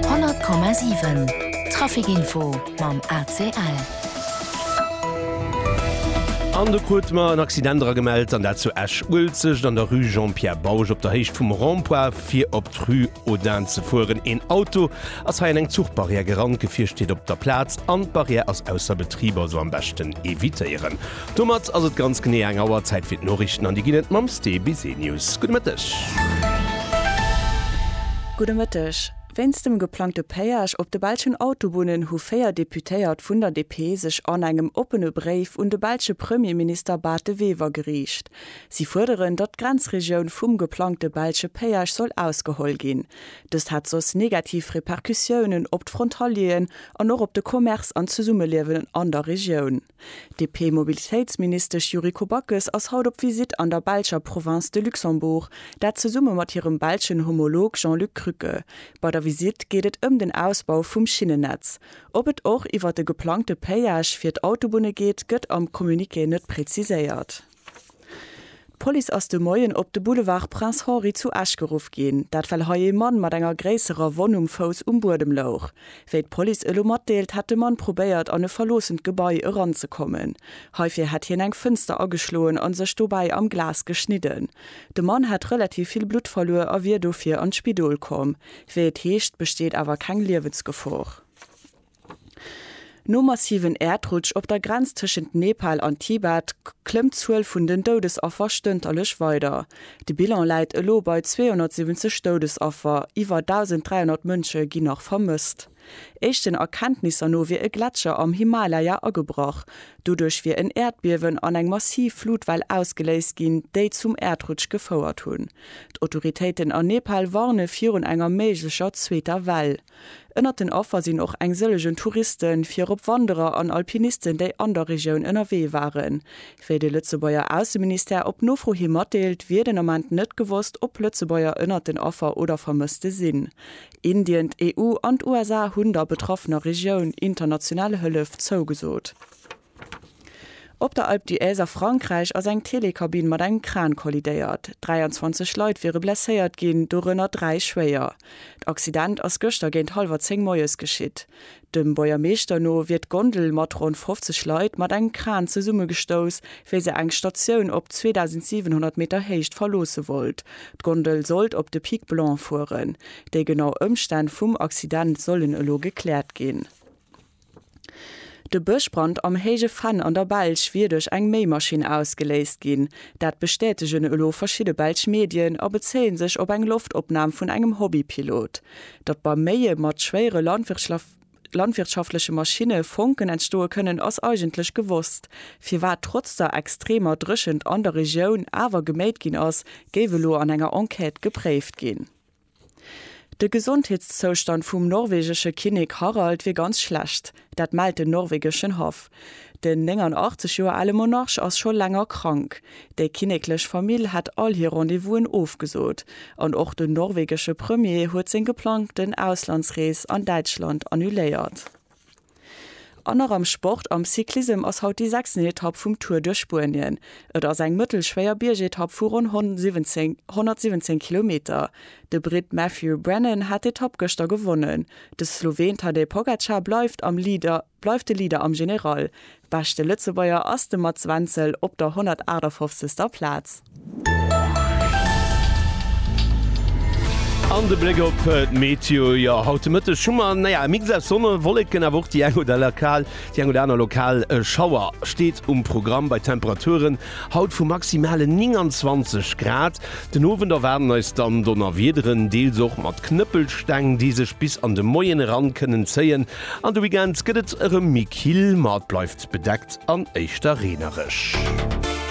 100,7 Trafic Info mam ACL. An de krute mer en Accident era gemellt, an dat zu Esch-Uelzecht an der Rue Jean-Pierre Bausch op der Héicht vum Rond-point, fir op d'Rue Audin ze fueren. Een Auto ass hei an eng Zuchbarrière gerannt. D'Gefier steet op der Plaz an d'Barrière ass ausser Betrib, also am beschten evitéieren. Domat ass et ganz genee eng Auer Zäit fir d'Noriichten an déi ginn et mam Ste Bisenius. Gudde Mëtteg. Gudde Mëtteg. Wéinst dem geplangte Péage op de belschen Autobunnen hu véier Deputéiert vun der DP sech an engem oppene Bréif un de belsche Premierminister Bart De Wever geriicht. Si fuerderen, datt d'Grenzregioun vum geplangte belsche Péage soll ausgeholl ginn. Dëst hätt soss negativ Repercussiounen op d'Frontalieren an och op de Commerce an d'Zesummeliewen an der Regioun. D'DP-Mobilitéitsministesch Yuriko Backes ass haut op Visitt an der belscher Province de Luxembourg, dat zesumme mat hirem belschen Homolog Jean-Luc Krücke. Bei der Visitt geet et ëm den Ausbau vum Schinnennetz. Ob et och iwwer de geplangte Péage fir d'Autobunne geet, gëtt am Communiqué net preziséiert. D'Police ass de Moien op de Boulevard Prince Henri zu Esch geruff ginn. Dat well hei ee Mann mat enger gréisserer Wonn um Fouss um Buedem louch. Wéi d'Police elo matdeelt, hätt de Mann probéiert an e verloossent Gebai eranzekommen. Heifir hätt hien eng Fënster ageschloen a sech dobäi am Glas geschnidden. De Mann hätt relativ vill Blutt verluer a wier dofir an d'Spidol komm. Wéi et heescht, besteet awer keng Liewensgefor. Nom massiven Äerdrutsch op der Grenz tëschent Nepal an Tibet klëmmt d'Zuel vun den Doudesaffer stënterlech weider. De Bilan läit elo bei 270 Doudesaffer, iwwer 1.300 Mënsche ginn nach vermësst. Éischten Erkenntnisser no wier e Gletscher am Himalaya agebrach. Doduerch wier en Äerdbiewen an eng massiv Flutwell ausgeléist ginn, déi zum Äerdrutsch gefouert hunn. D'Autoritéiten a Nepal warne virun enger méiglecher zweeter Well. Ënnert den Affer sinn och eng sëllegen Touristen, virop Wanderer an Alpinisten, déi an der Regioun ënnerwee waren. Wéi de Lëtzebuerger Ausseministère op Nofro hi matdeelt, wier den Ament net gewosst, ob Lëtzebuerger ënnert den Affer oder Vermësste sinn. Indien, d'EU an d'USA hunn der betraffener Regioun international Hëllef zougesot. Op der Alpe d'Huez a Frankräich ass eng Telekabinn mat engem Kran kollidéiert. 23 Leit wiere blesséiert ginn, dorënner dräi schwéier. D'Accident ass gëschter géint hallwer zéng moies geschitt. Dem Buergermeeschter no wier d'Gondel mat ronn 50 Leit mat engem Kran zesummegestouss, wéi se eng Statioun op 2.700 Meter Héicht verloosse wollt. D'Gondel sollt op de Pic Blanc fueren. Déi genau Ëmstänn vum Accident sollen elo gekläert ginn. De Bëschbrand am Héije Venn an der Belsch wier duerch eng Méimaschinn ausgeléist ginn. Dat bestätegen elo verschidde belsch Medien a bezéie sech op eng Loftopnam vun engem Hobbypilot. Datt beim Méie mat schwéiere landwirtschaftleche Maschinne Fonken entstoe kënnen, ass eigentlech gewosst. Firwat trotz der extremer Dréchent an der Regioun awer geméit ginn ass, géif elo an enger Enquête gepréift ginn. De Gesondheetszoustand vum norwegesche Kinnek Harald wier ganz schlecht. Dat mellt den norwegeschen Haff. Den 89 Joer ale Monarch ass scho länger krank. Déi kinneklech Famill hätt all hir Rendez-vous'en ofgesot. An och den norwegesche Premier huet seng geplangten Auslandsrees an Däitschland annuléiert. An nach am Sport, Am Cyclissem ass haut déi sechsten Etapp vum Tour duerch Spuenien. Et ass eng mëttelschwéier Biergetapp vu ronn 117 Kilometer. De Britt Matthew Brennan hat d'Etapp gëschter gewonnen. De Sloween Tadej Pogacar bleift am Leader bleift de Leader am General. Beschte Lëtzebuerger ass de Mats Wenzel op der 158. Plaz. An de Bléck op d'Meteo, jo haut de Mëtteg hu mer naja e Mix aus Sonne, Wolleken awer och déi eng oder lokal déi eng oder aner lokal Schauer steet um Programm bei Temperaturen haut vu maximale 29 Grad. Den Owend erwaarden eis dann Donnerwiederen, deels och mat Knëppelsteng, déi sech bis an de Moien eran kënnen zéien. An de Weekend gëtt et erëm méi kill, ma et bleift bedeckt an éischter reenereg.